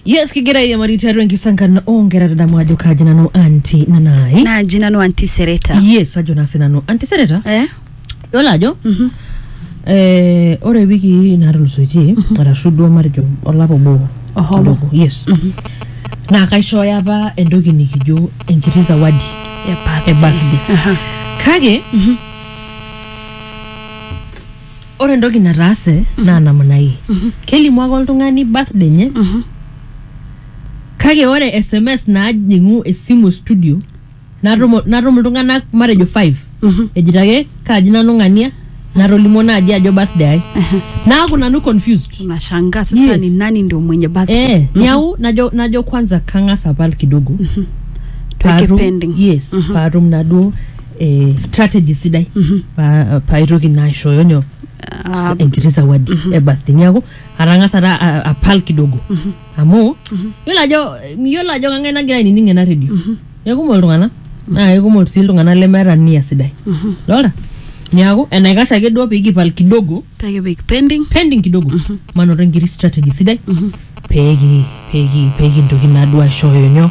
yes kigira airiamari tiatua enkisankan oonkera tadamu ajo kaji nanu anti nanai naaji nanu antisereta yes ajo naa sinanu antisereta eh? yiolo ajo eh, ore wiki natulusoitie arashu duo matejo olapa obo Oho. kidogo, yes naa kaishooyo apa entoki nikijo enkiti zawadi e birthday kake ore entoki nataase naa namna hii kelimu ake oltung'ani birthday enye kake ore sms najing'u esimu e studio natum natum iltung'anak matejo five ejito ake kaaji nanu ng'ania natolimuo naaji ajo birthday ai naaku nanu confused unashangaa sasa Yes. ni nani ndio mwenye birthday eh, niaku najo najo kwanza kang'as apal kidogo Tuweke paatum- pending. yes paatum naduo eh, strategy sidai pa- paitoki naa aishooyo nyoo Ah, enkiti zawadi e birthday niaku atang'asa ta a- apal kidogo amu yiolo ajo miyiolo ajo kang'ae nagira ainining ena redio kekumok iltung'anak naa kekumok sii iltung'anak lemeeta nia sidai lora niaku enaikash ake duo pikipal kidogo pekipik pending pending kidogo manoto enkiti strategy sidai peki peki pekintoki naa duo aishooyo nyoo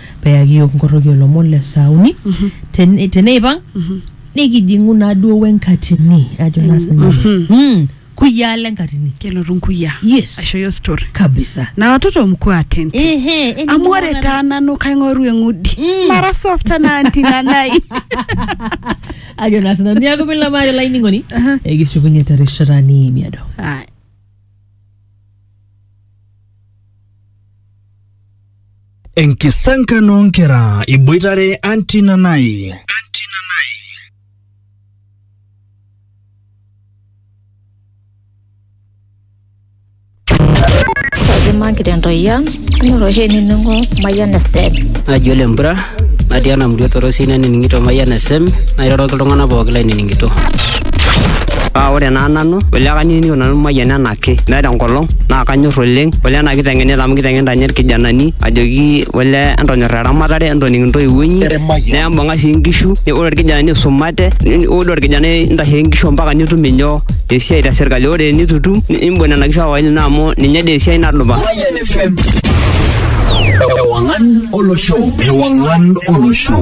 Peyaki iyiook inkorroki oo lomon le saa uni, tene- teneipang nikijing'u naaduo we nkatini ajo naa sinanu. Mm, kuyiaa le nkatini. kelotu nkuyiaa Yes. aisho yo story Kabisa. na watoto mkuwa attentive Ehe, eni amu ore ning'uaa taa nanu kaing'oru eng'udi Mm. mara soft anaa anti nanai ajo naa sinanu niaku milamari olainining'oni ekishukunye terishata niimiado Aya. Enkisankan oo nkera iboitare Aunty Nanai. Imaki tentoyia anyor oshi ainining'o Mayian FM. naji ole mpura natii ena murua torosi nanining'ito mayian esem nairoroki iltung'anak pooki lainining'ito Paa ore naa nanu, ole kanining'ito nanu mayian ena ake meeta enkolong naa kanyor oleng ole ena kiteng'enita amu kiteng'enita ninye irkijanani ajoki ole entonyor eramatare entoning intoiwuo inyi nembung'a sii inkishu ne- ore irkijanani isumate ni- ore orkijanai intasheki inkishu mpaka nitum inyoo esiai te sirkali ore enitu itum ni- imbung nena kishu awae ino amu ninye dii esiai nadupa Mayan FM. Ewangan Olosho. Ewangan Olosho.